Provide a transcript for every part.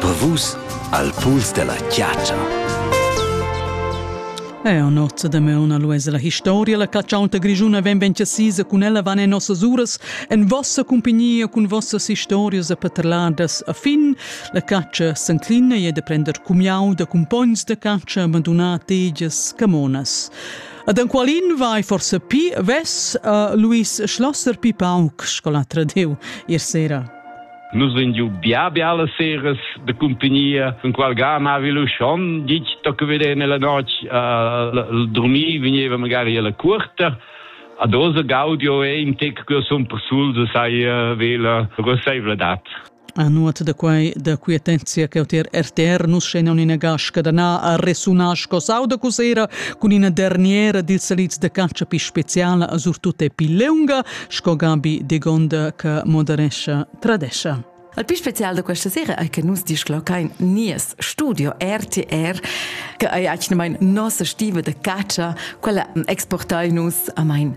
Per vus al puls della chiatscha. Eo nozza da meuna luesa la historia, la catschaunta grigiuna ven ben chasisa cun ella van en nossas uras, en vossa cumpagnia cun vossas historias a paterladas a fin. La catscha s'enclina e de prender cumiau da cumpogns de catscha abandonat tegias camonas. Ad enqualin vai forse pi vess uh, Luis Schlosser pi pauc scolatra deu ir sera. Nus vegn giu bia biala seras de compagnia, von qual ga mavi lu schon gig tocca vedere nella noc uh, dormir veniva magari alla curta. Ad osa gaudio è in tec che son persul de sai uh, vela rosaivladat. A nuot da quei da quietezia ch'jeu tier RTR nus schegnan ina gascha da na a resunar sco sauda cusera cun ina derniera dils salids da calcia pi speciala a surtut e pi leunga sco Gabi Degonda che moderescha tradescha. Al più special da questa sera è che nus disclocain nies studio RTR che è actualmente nostra stiva de caccia, quella exportai nus a mein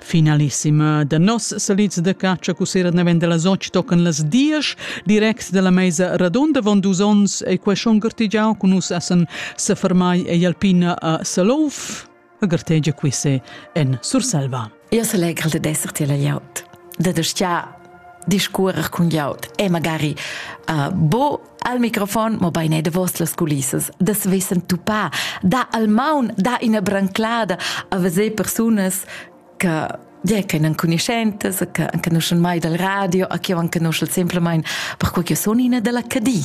Finalissima da noss salits da catscha cussera naven dalla soc tocan las diesch direct dalla meisa radunda von dus ons ei quei schon gartegiau cun nus essen sefermai ei Alpina a Salouf a gartegia quisse en Surselva. Io selegral de esser tiel laut. De de stia discuorer cun glieud e magari uh, bo al microfon, mo beine davos las culissas, das wissen tu pa, da al maun, da ina branclada a veser personas che yeah, che non conoscentes, che anche non mai dal radio, a che anche non semplicemente per quel che sono in della Cadi.